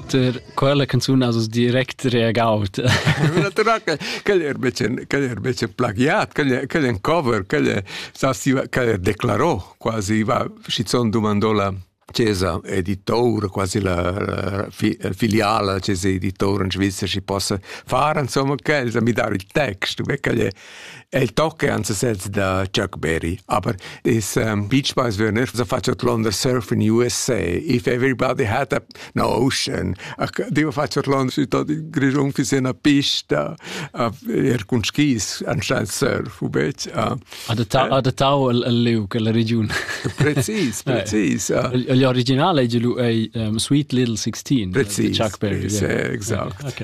Per quella canzun has vus direct reagaut. Quel er becen, quel er becen plagiat, quel, quel en cover, quel, quel declarò, quasi va, schizzon domandò la Cesa editor, quasi la, la filiala la Cesa editor in Svizzera si possa fare, insomma, che mi dar il text, perché El tocca an sesez da Chuck Berry, aber is um, Beach Boys würden nicht so fast London Surf in USA if everybody had a, an ocean. Dio fast London Grischung für eine Pista, er con skis anstatt surf, ubet. Adattau al liug, alla region. Precis, precis. Gli originale è Sweet Little 16, Chuck Berry. Exakt.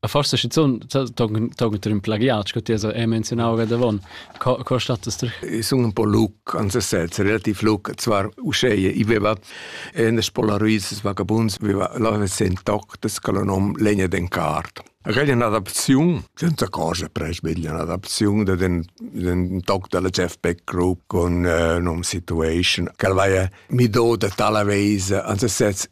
A forse schizun togn in plagiat sco ti hai menzionau davon co co status I sun un po luc ans sez relativ luc zwar uscheie i veva en spolaruis vagabunds veva la sen toc des colonom legna den cart Reglia un'adaptazione, senza cosa presbiglia un'adaptazione de den, den toc della Jeff Beck Group con uh, nom Situation, che vai mi do de tala weise, anzi sez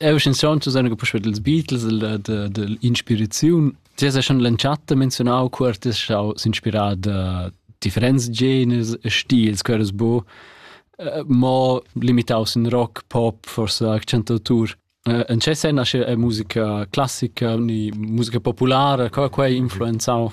Eu schanzont zu sagen puspei dels Beatles de de de inspiraziun. Ti has schon l'entschatta menzionau quer ti schau s'inspirar da differents genres e stils queres bu uh, mo limitaus in rock pop forse accentautur uh, en che sen asche musica classica ni musica populara qua qua influenzau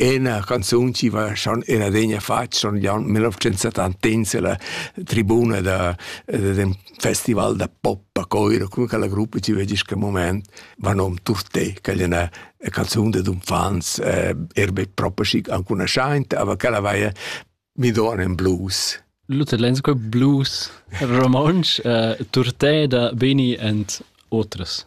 Ena canzun chi va schon in adegna fat schon glion 1970 la tribuna da d'ün festival da pop a Coiro, cun quella gruppa chi vedi ün moment, va nom Turté, che è üna canzun dad unfants, er be propa schic ancunaschaint, aber quella vaia mi don in blues. Luther Lensko blues romontsch, uh, Turté da Beni and otras.